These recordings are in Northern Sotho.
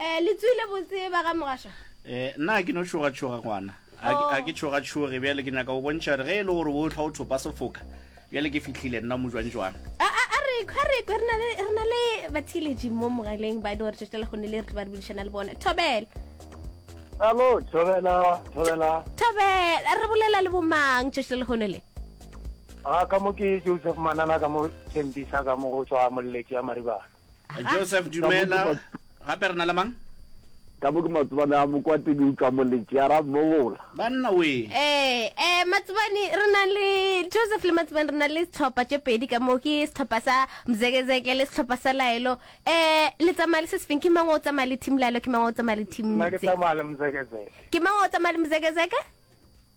Eh, le tswile botse ba ga mogašwa? Eh, nna ha ke no tšhogatšhoga ngwana. Ha ke- ha ke tšhogatšhoge bjale ke nyaka go bontšha gore ge e le gore o tlha o thopa sefoka bjale ke fihlile nna mojwanjwana. A a a re kho re kwe re na le re na le bathiletši mo mogaleng ba e le gore tšatši la gone le re ba re bulišana le bona. Thobela. Alo, thobela, thobela. Thobela, re bolela le bomang tšatši la legone le? A ka mo ke Joseph Manana ka mo Thembisa ka mo go tswa molleki ya Maribana. joseph dumela gape re na le mang ka bo ke matsobane a mokwate ke utlwa moletši ya ra mogola banna we ee ee matsobane re na le joseph le matsobane re na le setlhopha tše pedi ka moo ke setlhopha sa mzekezeke le setlhopha sa laelo um le tsamaya le se sefeng ke mang o tsamaya le team laelo ke mang o tsamaya le team ke mang o tsamaya le mzekezeke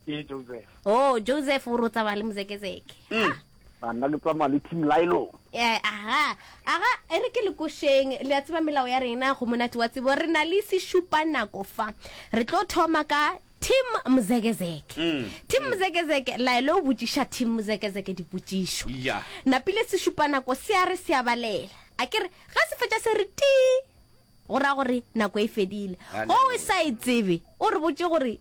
ke joseph oh joseph o rotsa ba le mozekezeke mm. banna le tsamaya le team lilo eh, aha aga e re ke lekošeng le a tseba melao ya rena go monate wa tsebo re na le sešupa nako fa re tlo thoma ka team mozekezeke mm. team mm. mozekezeke laele o botšiša team mozekezeke dipotšišo napile sešupa nako se a re se a balela a ke re ga se fetša se re ti go raya gore nako e fedile go o sa e tsebe o re botse gore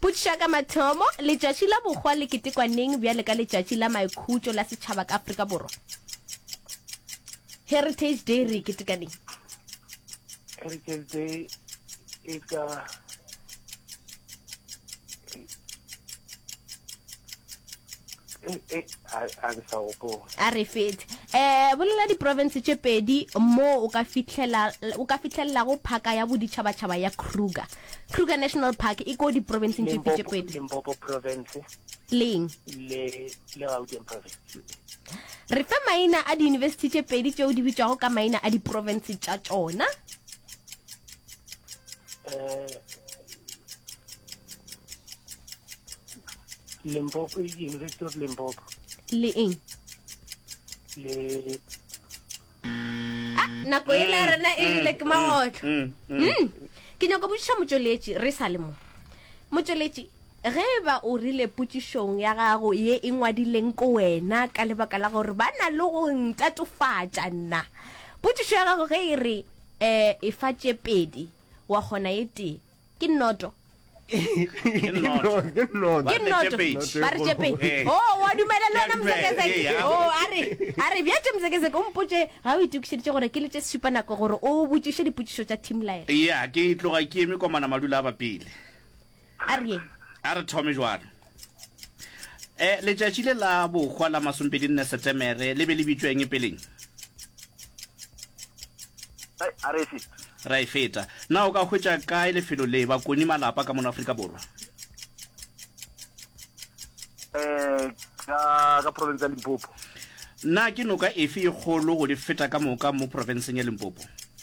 Potšiša ka mathomo, Letšatši la Bohwa le ketekwa neng bjale ka Letšatši la Maikhutšo la Setšhaba ka Afrika Borwa? Heritage Day re e keteka neng? Heritage Day e ka a re fete um bolela diprovince tše pedi moo o ka fitlhelelago phaka ya boditšhabatšhaba ya kruger Kruger National Park e ko diprobenseng tše tse pedi. Limpopo province. Leng. Le le Gauteng province. Re fe maina a di-university tše pedi tšeo di bitšwago ka maina a diprovince tša tšona. Eh, Limpopo, University of Limpopo. Le eng? Le nako e le ya rena e rile ke magotlo Mm, mm. Mm. ke nyako botšiša motšweletši re sa le mo motšweletši ge e ba o rile potšišong ya gago ye e ngwadileng ko wena ka lebaka la gore ba na le go ntatofatša nna potšišo ya gago ge e re um e fa tše pedi wa kgona e tee ke nnoto ke nnoto ke nnoto ke nnoto ba re tšepe o oh, wa dumela le wena mosekeseke o oh, a re a re bja tše mosekeseke o mpotše ga o itokišeditše gore ke le tše supa nako gore o botšiše dipotšišo tša team line ya ke tloga ke eme komana madula a bapele a re ye a re thome jwalo E, letšatši le la bohwa la masompedi nne Setemere le be le bitšweng peleng? A re feta. Ra e feta. Na o ka hwetša kae lefelo le, bakoni, malapa ka mono Afrika Borwa? E, ka, ka province ya Limpopo. Na ke noka efe e kgolo go di feta ka moka mo profenseng ya Limpopo?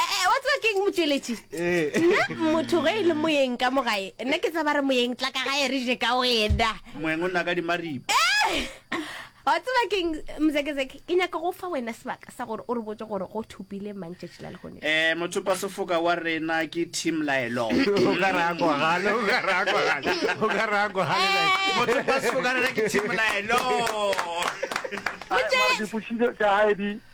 Eh, eh, wa tseba keng motšweletši eh. nna motho ge e le moyeng ka mogae nna ke tsaba re moyeng tla ka gae re je ka wena moeng o nna ka dimaripa eh! wa tseba keng mzekezeke ke nyaka go fa wena sebaka sa gore o re botse gore go thopile mang tšatši la legone um motho pa sefoka wa rena ke team laelo motho pa sefoka rena ke team laelo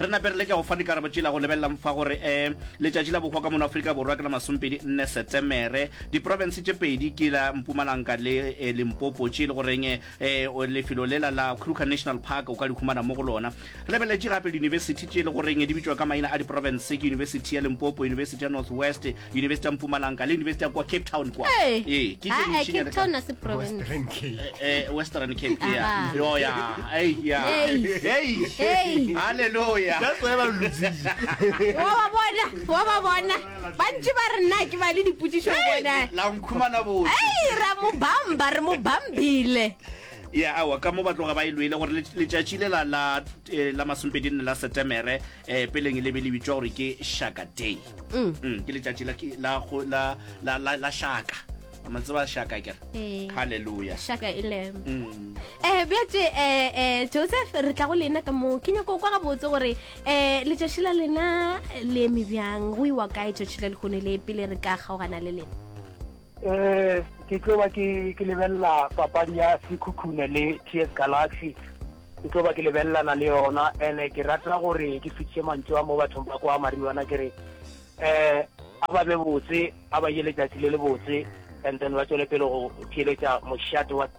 Re nape re leke go fa dikarabo tšela go lebelela mfa gore e letšatši la bohwa ka mono Afrika Borwa ke la masomepedi nne Setemere. Diprofense tše pedi ke la Mpumalanga le Limpopo tše e le goreng e lefelo lela la Kruger National Park o ka di humana mo go lona. Re lebeletše gape diyunibesithi tše e le goreng di bitšwa ka maina a diprofense ke Yunibesithi ya Limpopo, Yunibesithi ya North West, University ya Mpumalanga le University ya kwa Cape Town kwa. Hey. Eh, ke Ah, eh, generation ya Cape ka- Town a se province. Western Cape. Eh, eh, Western Cape Ah. yeah. Yo yeah. Hey yeah. Hey. Hey. Hey. Hallelujah. That's why ba losing. wa ba bona wa ba bona ba ntse ba re nna ke ba le dipotsiso bona La nkhumana bo. ei ra mo bamba re mo bambile ya awa ka mo ba tloga ba e loile gore let- letšatši le la la eh, la masompedi nne la setemere um peleng e lebe le bitswa gore ke shaka day Mm. Mm, ke letšatši la ki- la go- la- la- la- la shaka ama tseba shaka kere Ee. halleluja shaka e lem Mm. um bjatše um joseph re tla go lena ka moo ke nyako kwa gabotse gore um letšatši la lena le eme bjang go iwa kae tšatši la lehono le pele re ka kgaogana le lena Eh, ke tlo ba ke ke lebelela papadi ya Sekhukhune le TS Galaxy. Ke tlo ba ke lebelelana le yona ene ke rata gore ke fitše mantšu a mo bathong ba kwa Mariwana ke re eh a ba be botse a ba ye letšatši le le botse and then ba tšwele pele go theeletša mošate wa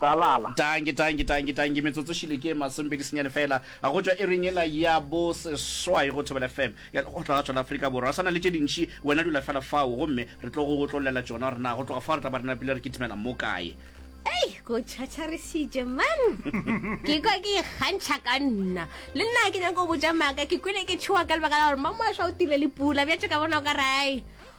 Tsalala. Dankie, dankie, dankie, dankie. Metsotso šele ke e masomepedi senyane feela go tšwa iring ela ya bo seswai go Thobela FM ya Lekgotla la tšona Afrika Borwa. Re sa na le tše dintši, wena dula feela fao gomme re tlo go go tlollela tšona gore na go tloga fao re tla ba re napile re kitimela mo kae. Ei, go tšhatšharisitše man! Ke kwa ke ikgantšha ka nna. Le nna ke nyaka go botša maaka, ke kwele ke tšhoa ka lebaka la gore mamoašwa o tile le pula, bjatše ka bona o ka re ai.